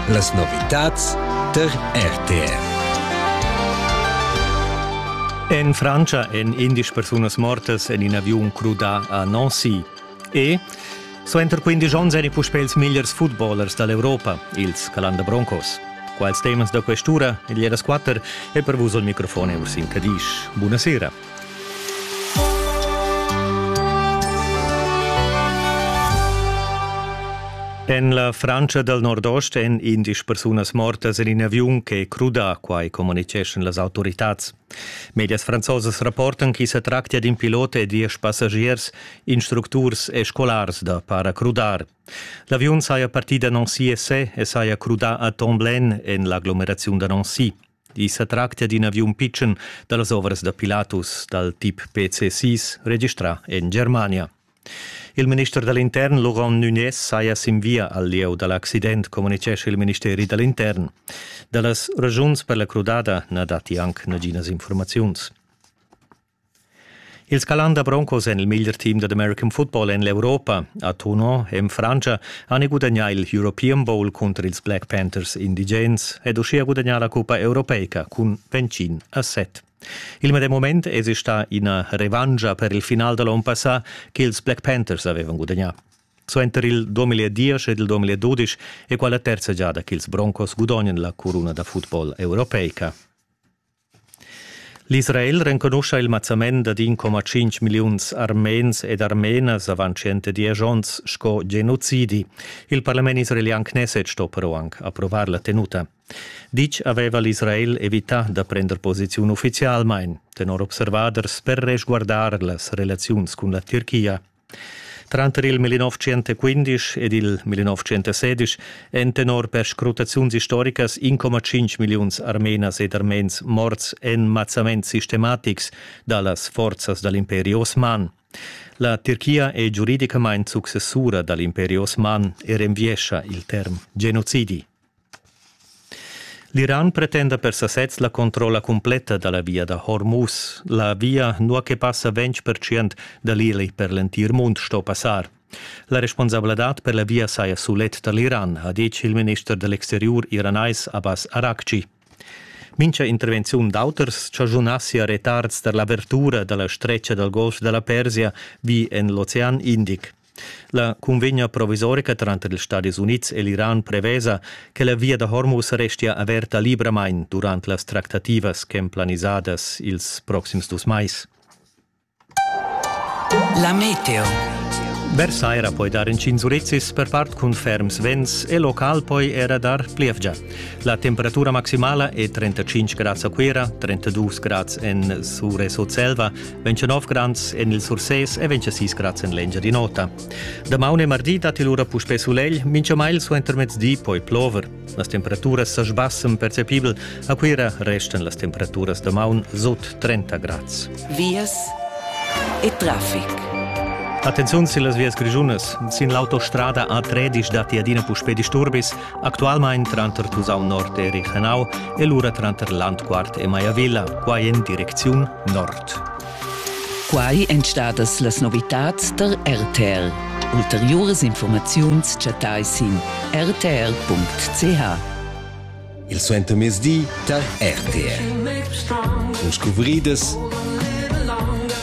Las novitads tar RTR. En Frantscha èn indesch persunas mortas en in aviun crudà a Nancy. E suenter quindesch onns èni puspè ils migliers footballers da l'Europa, ils Calanda Broncos. Quals temas da quest'ura? Il Jedas 4 è per vus il microfon Ursin Cadisch. Buonasera. En la Frantscha dal nordost èn indesch persunas mortas en in aviun che è crudà, quai communitgeschan las autoritads. Medias franzosas rapportan ch'i sa tractia d'in pilot e diesch passagiers, instructurs e scolars da paracrudar. L'aviun saja partì da Nancy e saja crudà a Tomblaine en l'aglomeraziun da Nancy. I sa tractia d'in aviun pitschen da las ovras da Pilatus dal tip PC-6 registrà en Germania. Il minister da l'intern Laurent Nunes saja sin via al lieu da l'accident, communitgescha il ministeri da l'intern. Da las ragiuns per la crudada na datti anc naginas informaziuns. Il Scalanda Broncos en il meglier team dad American football en l'Europa, a Tuno, en Frantscha, han gudagnà il European Bowl cunter ils Black Panthers indigens ed uschia gudagnà la cuppa europeica cun Vencin a set. Il medem moment èsi stà ina revancha per il final da l'onn passà ch'ils Black Panthers avevan gudagnà. Suenter il 2010 ed il 2012 è quella terza giada ch'ils Broncos gudognan la curuna da football europeica. L'Israel renconuscha il mazzament dad 1,5 milliuns armens ed armenas avant 110 onns sco genocidi. Il parlament israelian Knesset sto però anc approvar la tenuta. Ditg aveva l'Israel evità da prender posiziun uffizialmain, tenor observaders, per resguardar las relaziuns cun la Turchia. Tranter il 1915 ed il 1916 èn tenor perscrutaziuns istoricas 1,5 milliuns armenas ed armens morts en mazzaments sistematics da las forzas da l'imperi osman. La Tirchia è giuridicamain successura da l'imperi osman e renviescha il term genocidi. L'Iran pretenda per sasez la controlla cumpletta da la via da Hormuz. La via, nua che passa ventg percent da l'Ili per l'entir mund, sto passar. La responsabladad per la via saja sulet tar l'Iran, ha ditg il minister da l'exteriur iranais Abbas Araghchi. Mincha intervenziun d'auters chaschunassia retards tar l'avertura da la stretga dal Golf da la Persia vi en l'Ocean Indic. La cunvegna provisorica tranter ils Stadis Unids e l'Iran prevesa che la via da Hormuz restia averta libramain durant las tractativas ch'èn planisadas ils proxims dus mais. La meteo. Versair ha poi dar inschins urizzis per part cun ferms vents e local poi era dar plievgia. La temperatura maximala è 35 grads a Cuira, 32 grads en Sure Sutselva 29 grans en il Sursés e 26 grads en l'Engiadin'Ota. Damaun e mardi datti lura puspè sulegl, minchamail suentermezdi poi plover. Las temperaturas sa sbassen percepibel, a Cuira restan las temperaturas damaun sut 30 grads. Vias e traffic. Attenziun sin las vias grischunas. Sin l'autostrada A3 datti adina puspè disturbis. Actualmein tranter Tusau Nord e Riechenau e lura tranter Landquart e Maiavilla, quai en direcziun nord. Quai èn stadas las novitads der RTL. Ulteriuras informaziuns chattai sin rtl.ch. Il suentermezdi tar RTL. Cun scuvridas